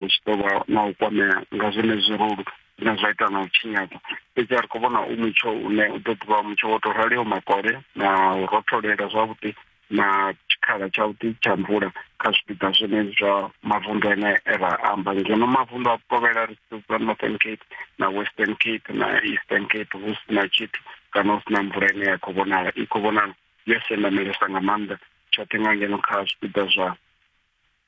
hu tshi ḓo vha na u kwamea nga zwenezwi rulu zwine zwa ita na u tshinyadza fhedzi a ri khou vhona u mutsho une u ḓo ḓivha mutsho wo tou raliho makole na u rotholela zwavhuḓi na tshikhala tshavhuḓi tsha mvula kha zwipiḓa zwine zwa mavunḓu ane e ra amba ngeno mavunḓu a vhukovhela ri sedza northern cape na western cape na eastern cape hu si na tshithu kana hu si na mvula ine ya khou vhonala i khou vhonala yo sendamelesa nga maanḓa tshoṱhe nga ngeno kha zwipiḓa zwa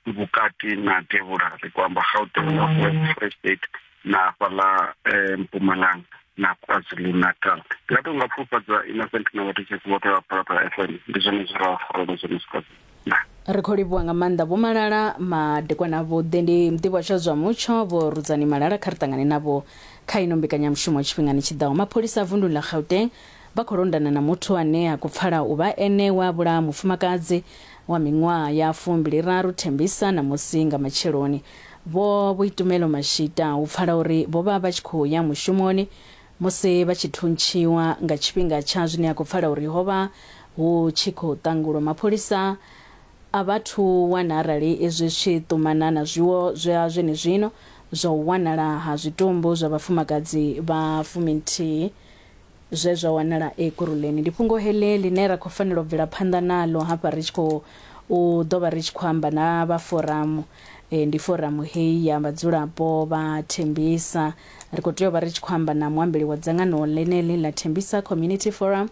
vhukati na devhula ri kho amba gauteng na free state na hafhaḽa um mpumalanga na kwazulu natal ndi nga to nga pfufhadza innocent na vhathu tshesi vhoṱhe vha phalaphala f m ndi zwone zwi ra farelo zwone zwikwazulu ri khou livhuwa nga maanḓa vho malala madekwana avhuḓi ndi muḓivhi tsha zwa mutsho vho rudzani malala kha ri ṱangane navho kha ino mbekanyamushumo tshifhingani tshi ḓaho mapholisa a vunduni ḽa gauteng Vha khou londana na muthu ane a khou pfala u vha ene we a vhulaha mufumakadzi wa miṅwaha ya fumbiliraru, Thembisa ṋamusi nga matsheloni. Vho Boitumelo Mashita hu pfala uri vho vha vha tshi khou ya mushumoni musi vha tshi thuntshiwa nga tshifhinga tsha zwine a khou pfala uri ho vha hu tshi khou ṱangulwa. Mapholisa a vha thu wana arali izwi zwi tshi ṱumana na zwiwo zwa zwenezwino zwa u wanala ha zwitumbu zwa vhafumakadzi vha fuminthihi Zwe zwa wanala Ekurhuleni ndi fhungo heḽi ḽine ra khou fanela u bvela phanḓa naḽo hafha ri tshi khou u ḓo vha ri tshi khou amba na vha foramu. Ndi foramu heyi ya vhadzulapo vha Thembisa. Ri khou tea u vha ri tshi khou amba na muambeli wa dzangano ḽeneḽi ḽa Thembisa Community Forum,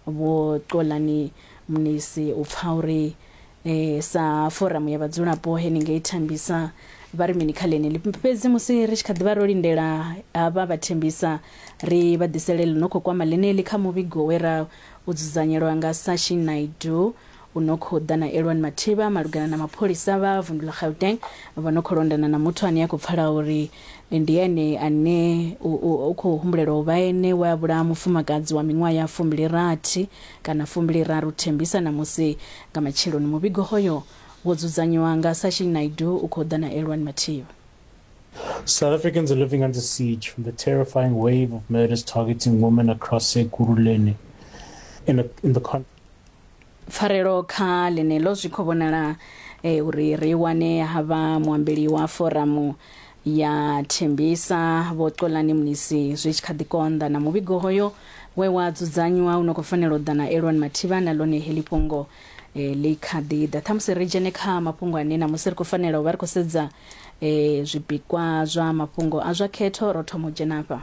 Vho Xolani Mnisi u pfa uri E, sa foramu ya vhadzulapo henengei thembisa vha ri mini kha ḽeneli fhedzi musi ri tshi kha ḓivha ro lindela havha vha thembisa ri vha ḓisele ḽi no khou kwama ḽeneli kha muvhigo we ra u dzudzanyelwa nga sashi naidu u no khou ḓa na elwani mathiba malugana na mapholisa vha vundu ḽa gauteng vha no khou londana na muthu ane a khou pfala uri Ndi ene ane u khou humbulelwa u vha ene we a vhulaha mufumakadzi wa miṅwaha ya fumbili-rathi kana fumbili-raru Thembisa ṋamusi nga matsheloni. Muvhigo hoyo wo dzudzanywa nga Sachin Naidu u khou ḓa na Elwani Mathiba. South Africans are living under siege from the terrifying wave of murders targeting women across Ekurhuleni in the in the Pfarelo kha ḽeneḽo zwi khou vhonala uri ri i wane ha vha muambeli wa foramu ya Thembisa Vho Xolani Mnisi zwi tshi kha ḓi konḓa na muvhigo hoyo we wa dzudzanywa u no khou fanela u ḓa na Elwan Mathiba, na ḽone heḽi fhungo ḽi kha ḓi ḓa. Ṱhamusi ri dzhene kha mafhungo ane ṋamusi ri khou fanela u vha ri khou sedza zwipikwa zwa mafhungo a zwa khetho, ro thoma u dzhena afha.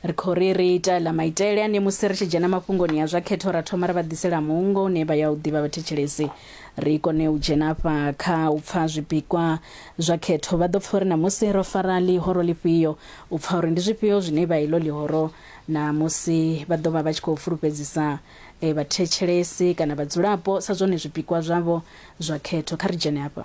ri khou ri ri ita ḽa maitele ane musi ri tshi dzhena mafhungoni a zwa khetho ra thoma ri vha ḓisela muungo une vha ya u ḓivha vhathetshelesi ri kone u dzhena afha kha u pfa zwipikwa zwa khetho vha ḓo pfa uri ṋamusi ro fara ḽihoro ḽifhio u pfa uri ndi zwifhio zwine vha ilo ḽihoro na musi vha ḓo vha vha tshi khou fulufhedzisa e, vhathetshelesi kana vhadzulapo sa zwone zwipikwa zwavho zwa khetho kha ri dzhene afha